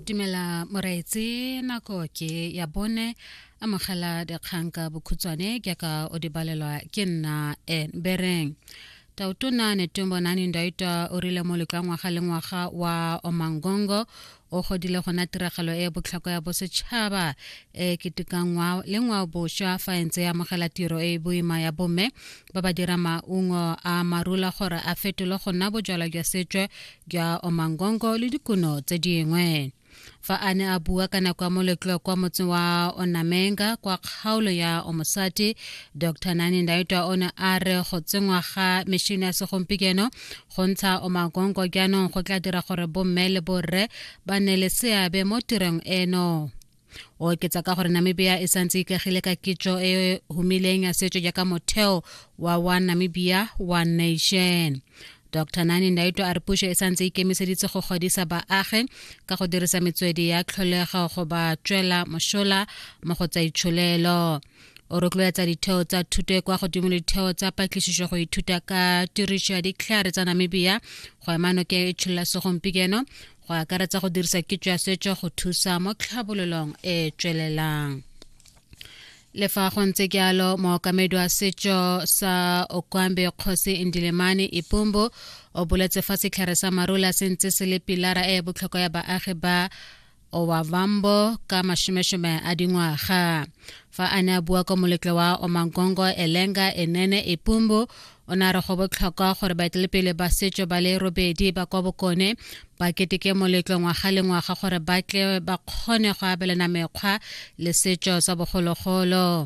dumela moraetse nako ke ya bone amogela dikgang ka bokhutshwane ke ka o di balelwa ke nna en bereng tautona netombonani ndaita o rile mo letla ngwaga le ngwaga wa omangongo o godile gona tiragalo e botlhokwa ya bosetšhaba e ketekangwa le ngwao boswa fa e ntse e amogela tiro e e boima ya bomme ba ba dira maungo a marula gore a fetolwe go nna bojalwa jwa setswe jwa omangongo le dikuno tse dingwe fa a ne a bua ka nako ya moletlo kwa motseng wa onamenga kwa kgaolo ya omosati dr nani ndaitwa o ne a re go tsenngwa ga mešhini ya segompieno go ntsha omagongo jaanong go tla dira gore bomme le borre ba ne le seabe mo tirong eno o oketsa ka gore namibia e santse ikagile ka kitso e humileng ya setso jaaka motheo wa wa namibia wa nation dr nani ndaito a re puso e santse ikemiseditse go godisa baagi ka go dirisa metswedi ya tlholego go ba tswela mosola mo go tsa itsholelo o rotloetsa ditheo tsa thuto e kwa godimo le ditheo tsa patlisiso go ithuta ka tiriso ya ditlhare tsa namibia go ema noke e tsholola segompieno go akaretsa go dirisa kitso ya setso go thusa mo tlhabololong e e tswelelang le fa go ntse jalo mookamedi wa setso sa okwambe kgosi indilemane ipombo o boletse fa setlhare sa marula se ntse se le pilara e e botlhokwa ya baagi ba owavambo ka mashomeshome a dingwaga fa a ne a bua kwa moletlo wa omankongo elenga enene ipombo o ne a re go botlhokwa gore baetelepele ba setso ba le robedi ba kwa bokone ba keteke moletlo ngwaga le ngwaga gore ba tle ba kgone go abelana mekgwa le setso sa bogologolo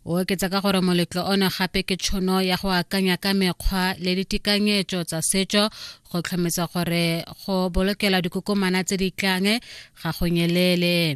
o oketsa ka gore moletlo ono gape ke tshono ya go akanya ka mekgwa le ditekanyetso tsa setso go tlhometsa gore go bolokela dikokomana tse di tlang ga go nyelele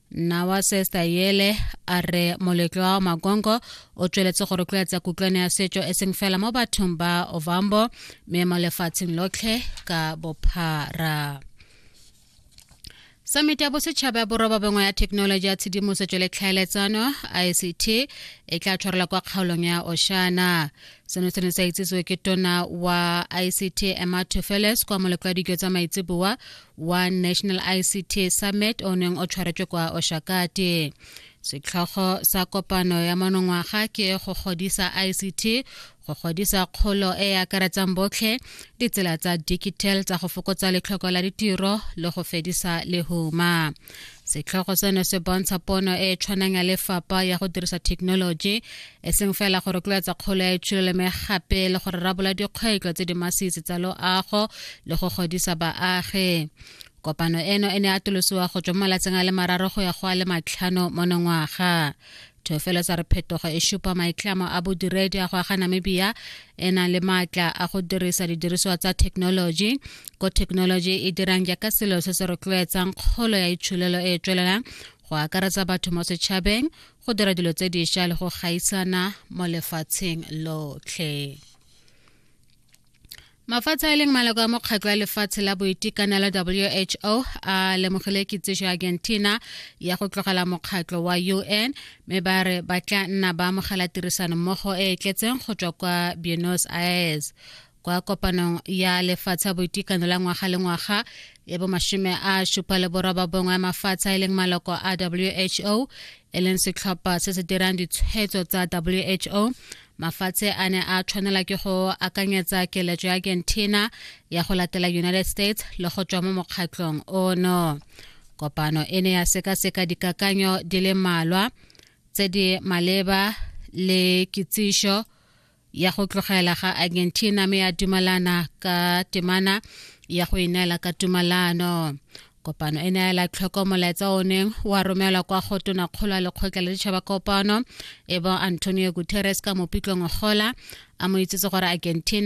nna wa sesta yele a re moletlo wa makongo o tsweletse go rotloetsa kutlwane ya setso e seng fela mo bathong ba ovambo mme mo lefatsheng lotlhe ka bophara samiti ya bosetšhaba ya boroba bongwe ya thekenoloji ya tshedimosetso le tlhaeletsano ict e tla tshwarela kwa kgaolong ya oshana seno se ne sa itsisiwe ke tona wa ict emma tufeles kwa molekwadijo tsa maitseboa wa national ict summit o neng o tshwaretswe kwa oshakate setlhogo sa kopano ya monongwaga ke go godisa ict go godisa kgolo e e akaretsang botlhe ditsela tsa digital tsa go fokotsa letlhoko la ditiro le go fedisa lehuma setlhogo seno se bontsha pono e e tshwanang ya lefapha ya go dirisa thekenoloji e seng fela go rotloetsa kgolo ya itshololeme gape le go rarabola dikgwetlho tse di masisi tsa loago le go godisa baagi kopano eno e ne atolosiwa go tswa mo malatsing a le mararo go ya go a le matlhano mo nongwaga thofelo tsa re phetogo e supa maitlamo a bodiredi a go aga namibia e nang le maatla a go dirisa didirisiwa tsa thekenoloji ko thekenoloji e dirang jaaka selo se se rotloetsang kgolo ya itsholelo e e tswelelang go akaretsa batho mo setšhabeng go dira dilo tse dišwa le go gaisana mo lefatsheng lotlhe mafatshe a leng maloko a mokgatlho wa lefatshe la boitekanelo who a lemogile kitsiso ya argentina ya go tlogela mokgatlho wa un mme ba re ba tla nna ba amogela tirisanommogo e e tletseng go tswa kwa buenos aires kwa kopanong ya lefatshe ya boitekanelo ya ngwaga le ngwaga ya bomashome a supa le boroba bongwe ya mafatshe a e leng maloko a who e leng setlhopha se se dirang ditshwetso tsa who mafatshe a ne a tshwanela ke go akanyetsa keletso ya argentina ya go latela united states le go tswa mo mokgatlhong ono kopano e ne ya sekaseka dikakanyo di le malwa tse di maleba le kitsišo ya go tlogela ga argentina me ya dumalana ka temana ya go ineela ka tumalano kopano e neela tlhoko molaetsa o neng wa romelwa kwa go tona kgolo ya lekgotla la ditšhaba kopano e bo antonio guterres ka mopitlong gola a mo itsetse gore argentina